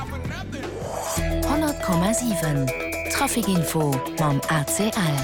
100,7 Trafic Info mam ACL.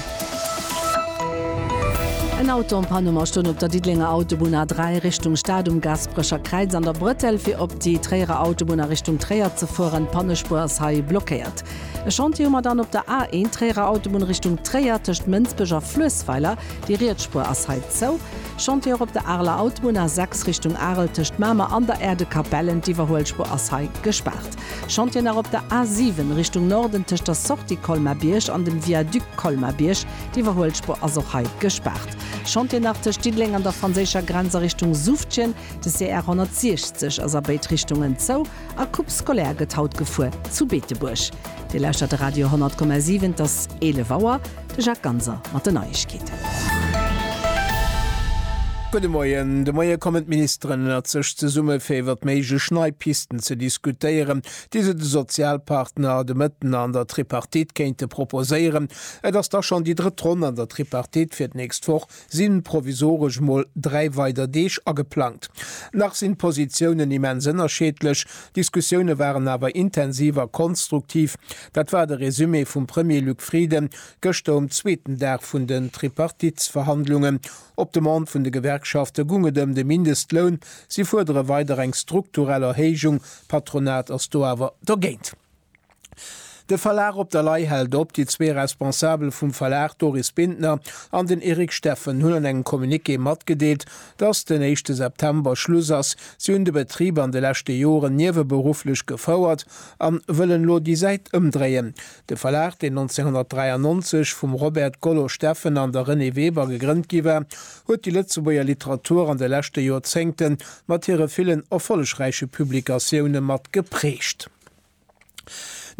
En Auto en Panne ma stoung op der Diddelenger Autobunn A3 Richtung Stad um Gaasperecher Kräiz an der Brëttel. Fir op déi Tréierer Autobunn a Richtung Tréier ze fueren, d'Pannespuer ass hei blockéiert. E Chantier hu mer dann op der A1 Tréierer Autobunn Richtung Tréier tëscht Mënsbech a Fluessweiler. Déi riets Spuer ass hei zou. Chantier op der Areler Autobunn A6 Richtung Arel tëscht Mamer an der Aire de Capellen, d'Iwwerhuelspuer ass hei gespaart. Chantier nach op der A7 Richtung Norden tëscht der Sortie Colmar-Bierg an dem Viaduc Colmar-Bierg, d'Iwwerhuelspuer ass och hei gespaart. Chantier nach tëscht Diddeleng an der franséischer Grenz a Richtung Suftjen, de CR 160 ass a béid Richtungen zou a Coupe scolaire gëtt haut gefuer zu Beetebuerg. Dir lauschtert de Radio 100,7, et ass 11 Auer. De Jacques Ganser mat den Neiegkeeten. Gudde Moien. De Moie kommen d'Ministeren ënnert sech zesumme fir iwwert méiglech nei Pisten ze diskutéieren, déi se de Sozialpartner, de Mëtten an der Tripartite kéinte proposéieren. Et ass da schonn déi drëtt Ronn an der Tripartite fir d'nächst Woch. sinn provisoresch mol 3 weider Deeg ageplangt. Nach sinn d'Positiounen immens ënnerscheedlech, d'Diskussioune waren awer intensiv a konstruktiv. Dat war de Resumé vum Premier Luc Frieden gëschter um zweeten Dag vun den Tripartitsverhandlungen. Op Demande vun de Gewerkschafte gung et ëm de Mindestloun. Si fuerdere weider eng strukturell Erhéijung, d'Patronat ass do awer dergéint. De Verlag Op der Lay hält op. Déi zwee Responsabel vum Verlag, Doris Bintner an den Eric Steffen, hunn an engem Communiqué matgedeelt, dass den éischte September Schluss ass. Si hunn de Betrib an de leschte Joren nieweberufflech gefouert an wëllen elo déi Säit ëmdréien. De Verlag, deen 1993 vum Robert Gollo Steffen an der Renée Weber gegrënnt gi war, huet déi Lëtzebuerger Literatur an de leschte Joerzéngte mat hire villen erfollegräiche Publikatioune mat geprägt.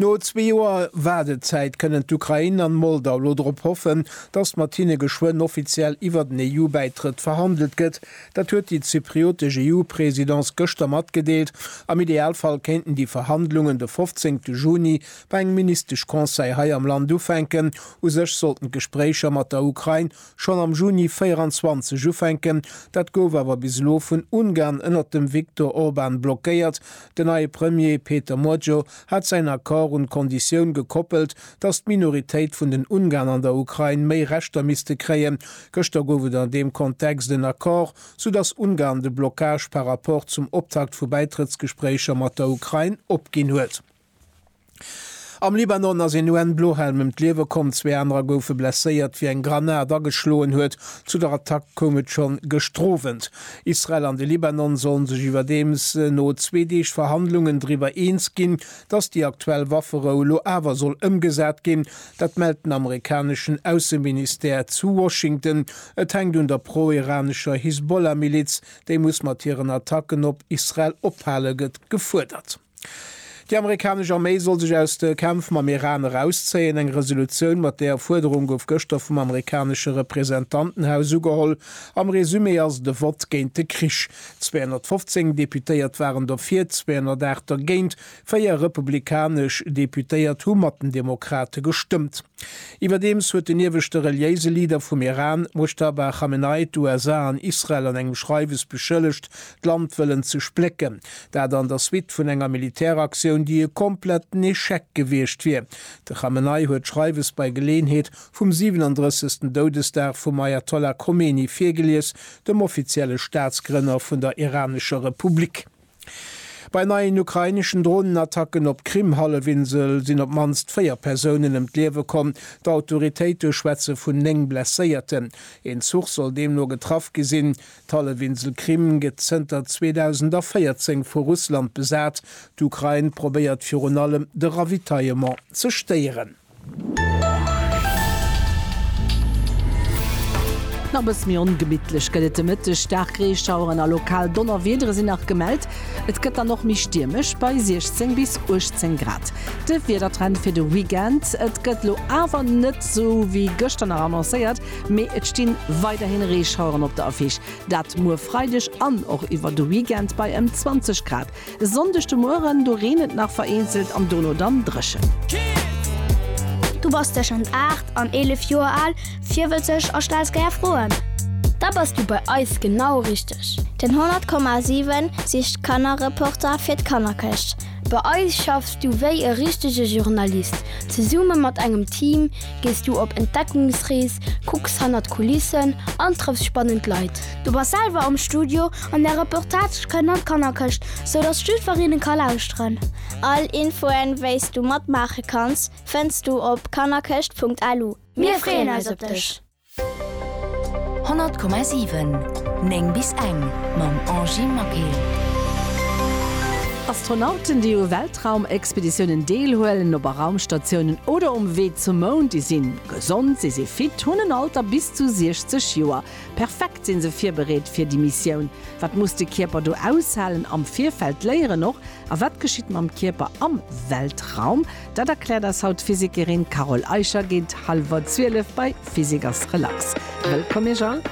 No zwee Joer Waardezäit kënnen d'Ukrain an d'Moldau elo drop hoffen, datt mat hinne geschwënn offiziell iwwert en EU-Bäitrëtt verhandelt gëtt. Dat huet déi zypriotesch EU-Presidence gëschter matgedeelt. Am Idealfall kéinten déi Verhandlungen de 15 Juni bei engem Ministesch-Conseil hei am Land ufänken. U sech sollten d'Gespréicher mat der Ukrain schonn am Juni 24 ufänken. Dat gouf awer bis elo vun Ungarn ënnert dem Viktor Orban blockéiert. Den neie Premier Péter Magyar hat säin Accord un d'Konditioun gekoppelt, datt d'Minoritéit vun den Ungarn an der Ukrain méi Rechter misste kréien. Gëschter gouf et an deem Kontext en Accord, soudatt Ungarn de Blockage par rapport zum Optakt vu Bäitrëttsgespréicher mat der Ukrain opginn huet. Am Libanon ass een UN-Blohelm ëm d'Liewe komm, zwee anerer goufe blesséiert, wéi eng Granat ageschloen huet. Zu der Attack koum et schonn gestrowent. Israel an de Libanon sollen sech iwwerdeems no zwee Deeg Verhandlungen driwwer eens ginn, datt déi aktuell Wafferou elo awer soll ëmgesat ginn. Dat mellt den amerikaneschen Ausseministère zu Washington. Et hänkt un der pro-iranescher Hisbollah-Miliz, déi muss mat hiren Attacken op Israel ophale, gëtt gefuerdert. Déi amerikanesch Arméi soll sech aus de Kämpf mam Iran erauszéien. Eng Resolutioun mat deeër Fuerderung gouf gëschter vum amerikanesche Representantenhaus ugeholl. Am Resumé ass et e Vott géint de Krich. 215 Deputéiert waren dofir, 208 dergéint. Véier republikanesch Deputéiert hu mat den Demokrate gestëmmt. Iwwerdeems huet den ieweschte reliéise Leader vum Iran, Mojtaba Khamenei, d'USA an Israel an engem Schreiwes beschëllegt, d'Land wëllen ze splécken, dat an der Suite vun enger Militäraktioun, déi e kompletten Echec gewiescht wier. De Khamenei huet d'Schreiwes bei Geleeënheet vum 37. Doudesdag vum Ayatollah Khomeini virgelies, dem offizielle Staatsgrënner vun der iranescher Republik. Bei neien ukraineschen Dronenattacken op d'Krim-Hallefinsel sinn op d'mannst véier Persounen ëm d'Liewe komm, d'Autoritéite schwätze vun néng Blesséierten. Een Zuch soll deemno getraff gi sinn. D'Hallefinsel Krim gëtt zënter 2014 vu Russland besat. D'Ukrain probéiert virun allem de Ravitaillement ze stéieren. Nach e bësse méi ongemittlech gëtt et de Mëtteg. Staark Reeschaueren a lokal Donnerwiedere sinn nach gemellt. Et gëtt dann och méi stiermesch bei 16 bis 18 Grad. De Wiedertrend fir de Weekend, Et gëtt elo awer net esou wéi gëschter nach annoncéiert. Mee et sti weiderhin Reeschaueren op der Affiche, dat muer Freideg an och iwwer de Weekend bei ëm 20 Grad. E Sonndeg de Mueren, do reent et nach vereenzelt an dono dann dréchen. Du bass tëschent 8 an 11 Joer al, virwëtzeg a stells gär Froen? Da bass du bei eis genau richteg! Den 100,7 sicht Kannerreporter fir d'Kannerkëscht. Bei eis schaffs du wéi e richtege Journalist, zesumme mat engem Team, Gees du op Entdeckungsrees, kucks hannert d'Kulissen an trëffs spannend Leit. Du bass selwer am Studio an där Reportage kënnt an d'Kannerkëscht, sou dass jidfer een e ka lauschteren. All Infoen, wéis du matmaache kanns, fënns du op kannerkëscht.lu. Mir freeën eis op dech! 100,7 9 bis eng mam Angie Maquet. Astronauten, déi u Weltraumexpeditiounen deelhuelen, op a Raumstatiounen oder um Wee zum Mound, déi sinn gesond, si si fit, hunn en Alter bis zu 60 Joer. Perfekt sinn se virbereet fir déi Missioun. Wat muss de Kierper do aushalen? Am Virfeld léieren och, a wat geschitt mam Kierper am Weltraum? Dat erkläert eis haut d'Physikerin Carole Eicher géint hallwer 12 bei Physik ass relax. Wëllkomm Iech all.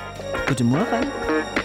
Gudde Mueren.